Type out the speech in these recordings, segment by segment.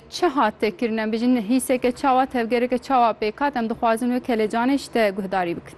Çi hate kirin? Em bijîn hîseke çawa, tevgereke çawa pêk hat? Em dixwazin wê kelecanê ji te guhdarî bikin.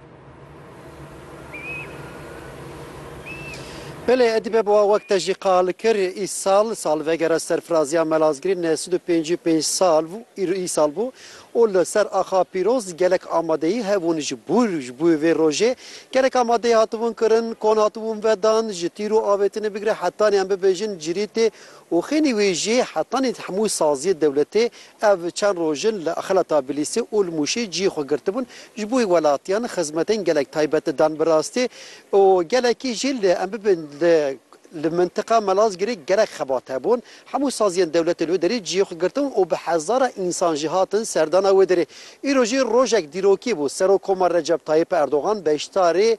Belê Edîbe Bowa wek te jî qal kir, îsal salvegera serfiraziya Melazgirê neh sed û pêncî û pênc sal bû, îsal bû û li ser axa pîroz gelek amadeyî hebûn ji bo ji bo vê rojê. Gelek amadeyî hatibûn kirin, kon hatibûn vedan, ji tîr û avêtinê bigire hetanî em bibêjin cirîtê Û xênî wê jî hetanî di hemû saziyê dewletê ev çend roj in li xelata Bilîsê û li Mûşê ciyê xwe girtibûn, ji bo welatiyan xizmetên gelek taybet di dan bi rastê û gelekî jî li em bibin li li mintiqa Melazgirê gelek xebat hebûn. Hemû saziyên dewletê li wê derê ciyê xwe girtibûn û bi hezara însan jî hatin serdana wê derê. Îro jî rojek dîrokî bû, Serokkomar Recep Tayyip Erdogan beşdarê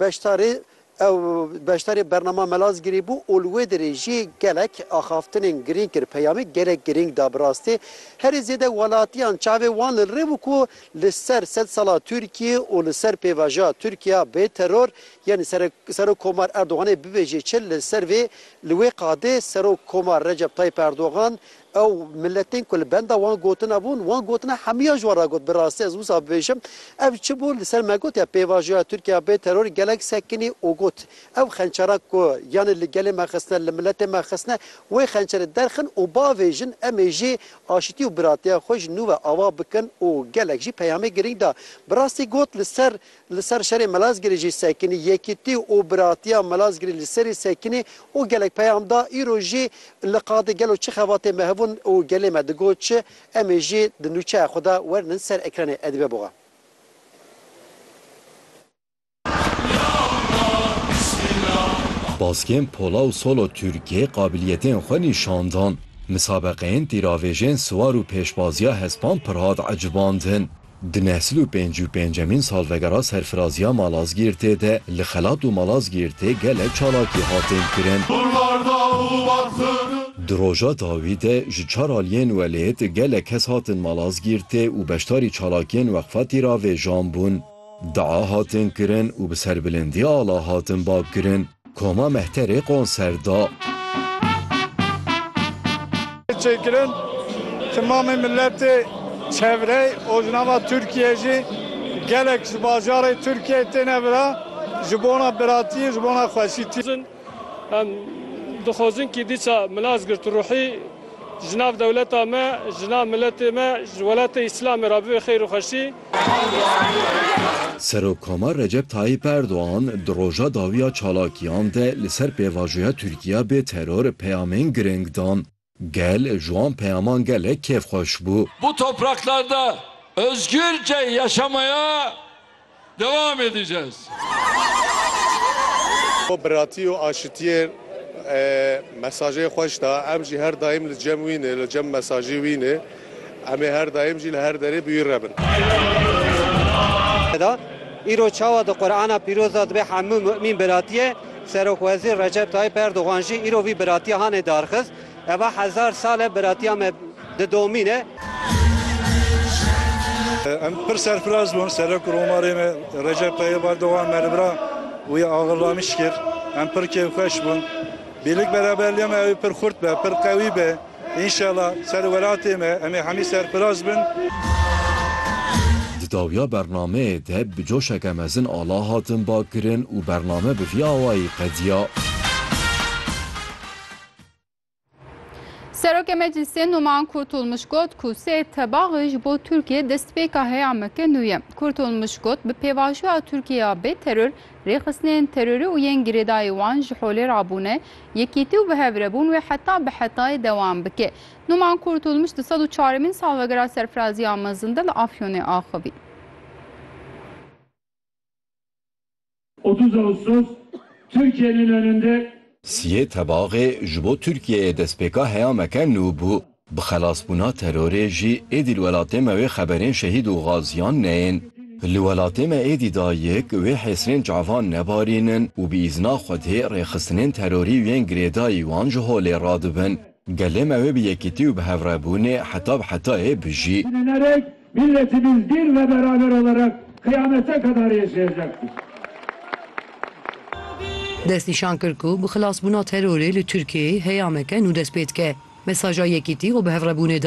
beşdarê Ew beşdarê bernama Melazgirê bû û li wê derê jî gelek axaftinên girîng kir. Peyamê gelek girîng da bi rastî. Herî zêde welatiyan çavê wan li rê bû ku li ser sed sala Tirkiyê û li ser pêvajoya Tirkiya bê teror yên Serok Komar Erdoganê bibêjê çi li ser vê li wê qadê Serok Komar Recep Tayip Erdogan Ew miletên ku li benda wan gotina bûn, wan gotina hemûyan ji wan re got. Bi rastî ez wisa bibêjim, ev çi bû li ser me got ya pêvajoya Tirkiya bê teror gelek sekinî û got, Ew xençeran ku yanê li gelê me xistine, li miletê me xistine, wê xençerê derxin û bavêjin em ê jî aşitî û biratiya xwe ji nû ve ava bikin û gelek jî peyamê girîng da. Bi rastî got li ser Li ser şerê Malazgirê jî sekinî, yekîtî û biratiya Malazgirê li serî sekinî û gelek peyam da, îro jî li qadê gelo çi xebatê me hebûn û gelê me digot çi, em ê jî di nûçeya xwe de wernin ser ekranê Edibe Boğa. Baskên pola û solo Tirkiyê qabiliyetên xwe nîşan dan. Misabeqeyên tîravêjên siwar û pêşbaziya hespan pir hat ecibandin. Di neh sed û pêncî û pêncemîn salvegera serfiraziya Malazgîrtê de li Xelat û Malazgîrtê gelek çalakî hatin kirin. Di roja dawî de ji çar aliyên welêt gelek kes hatin Malazgîrtê û beşdarî çalakiyên Weqfa Tîravêjan bûn. Dua hatin kirin û bi serbilindî ala hatin bak kirin. Koma Mehterê konser da. Çêkirin timamê miletê çevrey ojnava Tirkiyê jî gelek ji bajarê Tirkiyê têne vira ji bona biratiyê ji bona xweşîtî. Em dixwazin kî dîsa mila Zgirt Ruhî ji nav dewleta me, ji nav miletê me, ji welatê Îslamê ra bibe xeyr û xweşî. Serokkoma Recep Tayyîp Erdogan di roja dawiya çalakiyan de li ser pêvajoya Tirkiya bê teror peyamên girîng dan. Gel ji wan peyaman gelek kêfxweş bû. Bu topraklarda özgürce yaşamaya devam edeceğiz. Biratî û aşitiyê mesajê xweş da. Em jî her daîm li cem wî ne, li cem mesajê wî ne. Em ê her daim jî li her derê bi wî re bin. Da îro çawa di Qur'ana pîroz de dibe hemû mu'mîn biratiye, Serokwezîr Recep Tayîp Erdogan jî îro vî biratiya hane darxist, Eva hezar sal e biratiya me didomîne. Em pir serfiraz bûn Serok û Romarê me Recep Tayîp Erdogan me li bira wî axirlanîş kir. Em pir kêfxweş bûn. Bêlik beraberliya me ew ê pir xurt be, pir qewî be. Înşela ser welatê me em ê hemî serfiraz bin. Di dawiya bernameyê de bi coşeke mezin ala hatin bakirin û bername bi vî awayî qediya. Serokê Meclîsê Numan Kurtulmuş got ku sê tebaxê ji bo Tirkiye destpêka heya meke nû ye. Kurtulmuş got bi pêvajoya Tirkiye ya bê teror Rêxistinên terorî û yên girêdayî wan ji holê re bûne, yekîtî û bihevrebûn wê heta bi hetayê dewam bike. Numan Kurtulmuş di sed û çaremîn salvegera serfiraziya mezin de li Afyonê axivî. Otuz Ağustos Türkiye'nin önünde Siyê Tebaxê ji bo Tirkiyeyê destpêka heyameke nû bû. Bi xelasbûna terorê jî êdî li welatê me wê xeberên şehîd û gaziyan neyên. Li welatê me êdî dayik wê hêsirên çavan nebarînin û bi îzna Xwedê rêxistinên terorî û yên girêdayî wan ji holê radibin. Gelê me wê bi yekîtî û bi hevrebûnê heta bi hetayê bijî. Milletî min dîr ve beraber olarak qiyamete kadar yeşayacaktır. Destnîşan kir ku bi xilasbûna terorê li Tirkiyeyê heyame ke nû dest pê dike. Mesaja Yekîtî û Bihevrebûnê da.